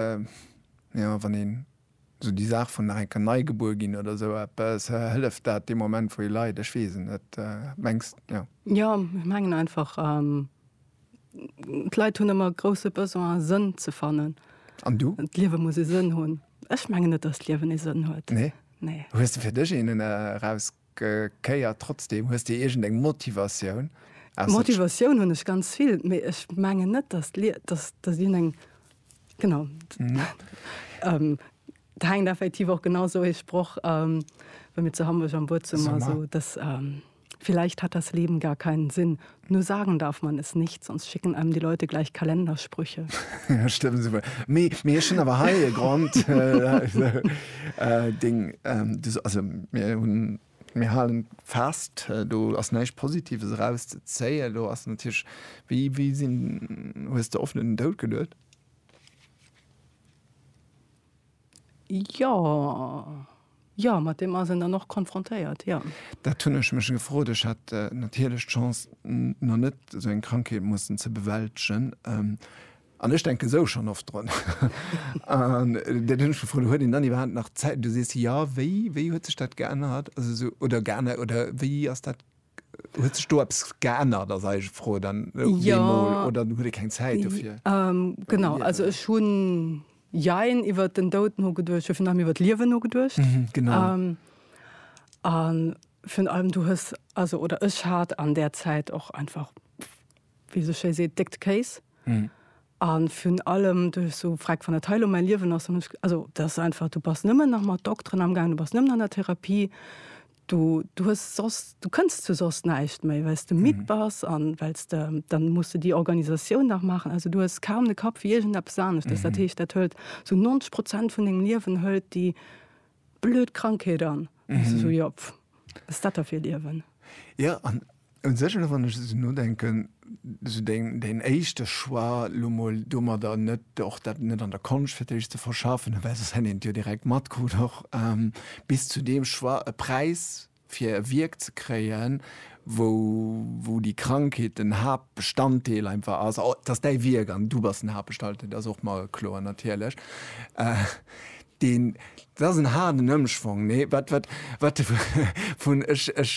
jo, wann een esou déi Saach vun nach eng Kéier nei gebuer ginn oder esou eppes, hëlleft dat dee Moment, wou ee leit? Ech weess et net. Mengs, jo? Jo, ech mengen einfach, d'Leit hunn ëmmer e grousse Besoin, Sënn ze fannen. An du? D'Liewe muss e Sënn hunn. Ech mengen net, dass d'Liewen e Sënn huet. Nee? Nee. Hues de fir dech een eraus? Kéier trotzdem? Hues de iergend eng Motivatioun? Motivatioun hunn ech ganz vill, mee ech mengen net, datt deen eng genau et hänkt effektiv och genau esou ee Sproch, wéi mir zu Hamburg am Buedzummer, esou dass vielleicht hat das Leben gar keinen Sinn, Nur sagen darf man es nicht, sonst schicken einem die Leute gleich Kalendersprüche. Ja, stimmt super. Me, me ech hunn awer hei e Grond äh, deng, ähm, du, also mir hunn mir halen fest, do ass näischt Positives erauszezéien. Do ass natierlech wéi, wéi sinn, hues de oft un den Doud geduet? Jo, jo, mat deem ass een dann och konfrontéiert, jo. Dat hunn ech mech gefrot. Ech hat natierlech d'Chance, nach net esou eng Krankheet mussen ze bewältegen. An ech denken esou schonn oft drun. An dat hunn ech gefrot, Huet een dann iwwerhaapt nach Zäit? Du sees, Jo, wéi, wéi huet sech dat geännert? Also esou, oder geännert, oder wéi ass dat, huet sech do eppes geännert, ass eis Fro dann deemol, oder huet ee keng Zäit dofir? Genau, also ech hunn Jein, iwwert den Doud nogeduecht, jo virun allem iwwert d'Liewen nogeduecht. Mhm, genau. An virun allem du hues, also oder ech hat an där Zäit och einfach, wéi sou schéi seet, déckt Kéis. Mhm. An virun allem du hues sou gefragt, wann dat hei elo mäi Liewen ass, dann hunn ech, also dat ass einfach, du bass nëmmen nach mat Dokteren amgaangen, du bass nëmmen an der Therapie, Du, du hues soss, du kënns zu soss näischt méi, well s de midd bass an well s de, dann muss de déi Organisatioun nach maachen. Also du hues kaum de Kapp fir iergendeppes aneschters. Dat heescht, dat hëlt sou 90 Prozent vun dengem Liewen, hëlt déi blöd Krankheet an. An du sou, jo, pff, wat ass dat da fir e Liewen? Jo, an Un sech, elo wann ech esou nodenken, esou deng, däin éischte Choix, elo mol domadder net, och dat net an der Konscht fir d'éischt ze verschaffen, well soss hätt een et jo direkt matkrut och, bis zu deem Choix, e Präis fir e Wierk ze kréien, wou, wou déi Krankheet den Haaptbestanddeel einfach ass, oh, et ass däi Wierk an du bass den Haaptbestalddeel, dat ass och mer kloer natierlech. Deen, dat ass en haarden Ëmschwong, nee, wat, wat, wat de vun, ech, ech,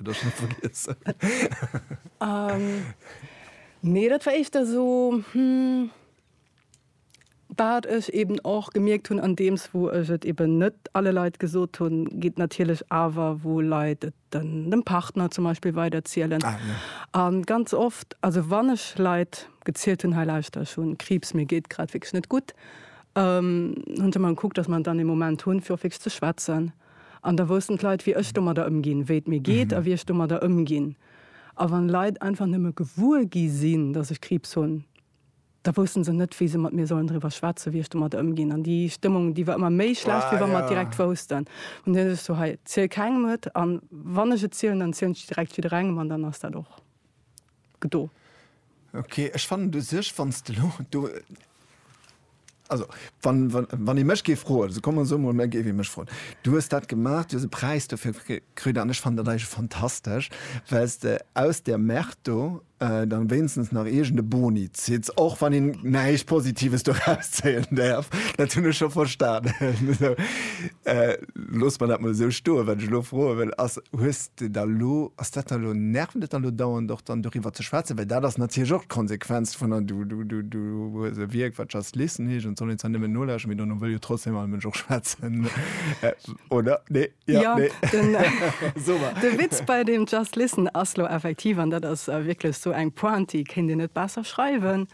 Dech net vergiessen. Nee, dat war éischter esou, wat ech eeben och gemierkt hunn, andeems wou ech et eeben net alle Leit gesot hunn, geet natierlech awer, wou Leit et dem Partner zum Beispill weiderzielen. A ganz oft, also wann ech Leit gezielt hunn, hei lauschter, ech hu Kriibs, mir geet grad wierklech net gutt, hunn se mer gekuckt, datt mer dann ee Moment hunn, fir och wierklech ze schwätzen. An da woussten d'Leit, wéi ech domadder ëmginn, wéi et mir geet a wéi ech domadder ëmginn. A wann Leit einfach nëmme gewuer gi sinn, dass ech Kriibs hunn, da wousste se net, wéi se mat mir sollen driwwer schwätzen, wéi ech domadder ëmginn. An déi Stëmmung, déi war ëmmer méi schlecht, wéi wa mer et direkt woussten. An dunn hu ech so, Hei, ziel kengem et, an wann ech et zielen, dann zielen ech et direkt jidderengem, an dann ass dat och. gedo. Ok, ech fannen u sech, wann s de elo do, also wann ee mech géif froen, also komm, soe mol, mä géif ee mech froen, du hues dat gemaach, du hues e Präis dofir kritt an ech fannen dat eigentlech fantastesch, well s de aus där Merde do dann wéinstens nach iergend e Boni zitt, och wann een näischt Positives doraus zéien däerf, dat hunn ech scho verstanen. Loosse mer dat mol esou stoen. Wat ech elo froe wëll ass, Hues de da elo, ass dat da elo, nervt et da elo dauernd och dann doriwwer ze schwätzen? Well dat ass natierlech och d'Konsequenz vun der, du, du, du, du hues e Wierk wat Just Listen heescht an et soll een zwar nëmmen nolauschteren, mee dono wëll jo trotzdeem all Mënsch och schwätzen, oder? Nee? Jo, Jo, nee? den, So mar. de Witz bei deem Just Listen ass elo effektiv, an dat ass wierklech esou eng Pointe, déi kéint een net besser schreiwen,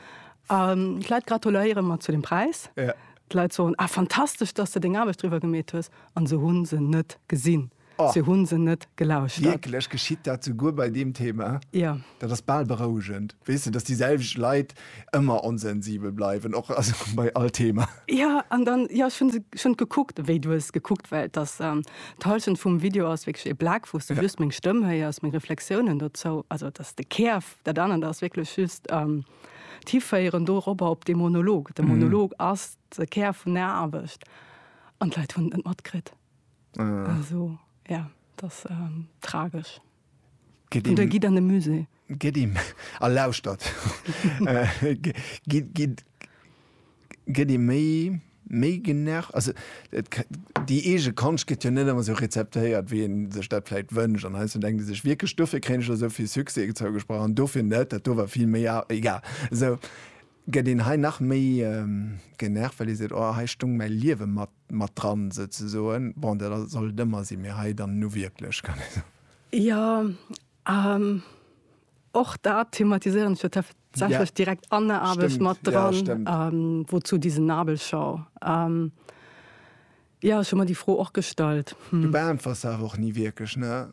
ähm, d'Leit gratuléiere mer zu dem Präis, Ja. D'Leit soen, Ah, fantastesch, dass de deng Aarbecht driwwer gemeet hues. An se hu se net gesinn. Oh. Se hu se net gelauschtert. Wierklech? Geschitt dat souguer bei deem Thema? Jo. Dat ass bal berouegend. Weess de, dass déi selwecht Leit ëmmer onsensibel bleiwen, och, also bei all Thema. Jo, an dann, jo, ech hu se schonn gekuckt, wéi du hues gekuckt, well dass d'Hallschent vum Video ass wierklech ee Black, wou s du just meng Stëmm héiers, meng Reflexiounen dozou, also dass de Kär, dat anert ass wierklech just. d'Hiféieren doropper op dee Monolog. De Monolog ass de Kär vun der Aarbecht an d'Leit hunn et net matkritt. Also ja, et ass tragesch. An da gitt an de Musée. Gitt a lauschtert. gëtt ee méi méi genervt, also et déi eege Konscht gëtt jo net ëmmer esou rezeptéiert wéi een sech dat vläit wënscht an heiansdo denkt ee sech wierklech dofir kréien ech elo esou vill Succès zougesprach an dofir net, dat do war vill méi a egal. Esou gëtt een hei nach méi genervt, well ee seet oh hei stoung mäi Liewe mat mat dran souzesoen. Bon dat soll et ëmmer sinn, mee hei dann nu wierklech kann ee soen. Jo. An och dat thematiséieren ech jo tatsächlech direkt an der Aarbecht mat dran, Wozu diese Nabelschau? Jo, ech hu mer déi Fro och gestallt. Du beäntwers se awer och ni wierklech, ne?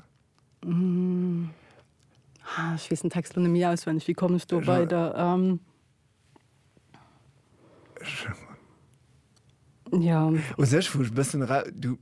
Ech weess den Text elo net méi auswenneg. Wéi komm ech do weider? Ja. U sech vu bëssen du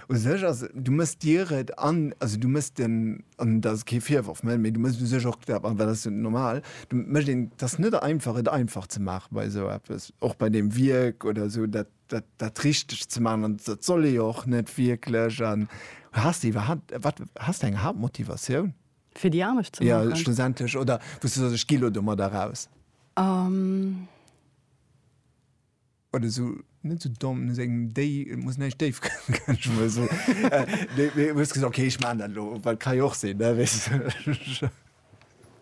u sech as du mëss Dir et an also du mëss den an dat ass kee Virworf, mä du mëss u sech och dat an dat ass jo normal, du mécht een dat ass net einfach et einfach ze maachen bei esou eppes, och bei deem Wierk oder esou dat dat dat richteg ze maachen an dat soll ee jo och net wierklech an. Has de iwwerhaapt wat has de eng Haaptmotivatioun? Fir déi Aarbecht ze maachen? Jo, schlussendlech. Oder wou s du soss, ech gi lo domadder raus. Um. Oder sou, net sou domm, no sengem Déi, et muss näischt déif kommen, kann ech emol soen. Mee du hues gesot, okay, ech maachen dat elo, well ka jo och sinn, ne, weess de.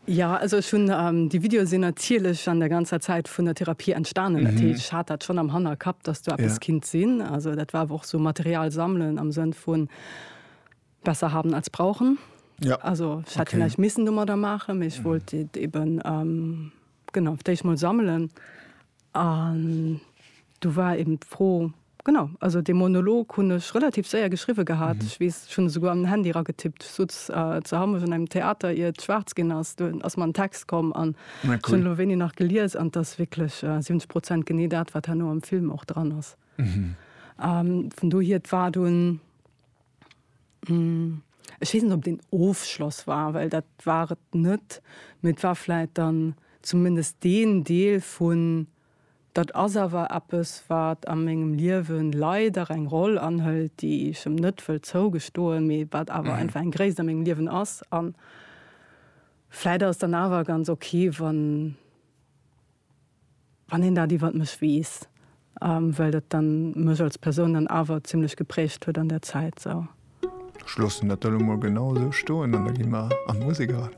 Jo, also ech hunn, déi Videoe sinn natierlech an der ganzer Zäit vun der Therapie entstanen. Dat heescht, ech hat dat schonn am Hannerkapp, dass do eppes kinnt sinn. Also dat war awer och sou Material sammelen am Sënn vun, Besser haben als brauchen. Ja. Also ich hätte okay. vielleicht missen dummer da machen, ich mhm. wollte eben ähm, genau ich mal sammeln. Und du war eben froh genau also den Monolog hun ich relativ sehr geschrieben gehabt. Mhm. Ich weiß, schon sogar am Handy ra getippt so äh, zu haben in einem Theater ihr schwarz gehen hast du aus meinem Text kommen an cool. schon wenig nach geliers an das wirklich äh, 70 Prozent gene dat war nur im Film auch dran ist. Mhm. Ähm, von du hier war du ein, Ech weess net, ob et een Ofschloss war, well dat war et net. Mee et war vläit dann zumindest deen Deel vun, dat ass awer eppes, wat a mengem Liewe leider eng Roll anhëlt, déi ech em net wëll zougestoen, mee wat awer einfach eng Gréisst a mengem Liewen ass. A vläit ass et dann awer ganz ok, wann Wann een dat iwwert mech weess, well dat dann mech als Persoun dann awer zimlech geprägt huet an der Zäit sou. Ech loossen dat da lo mol genau esou stoen an da gi mer an d'Musek eran.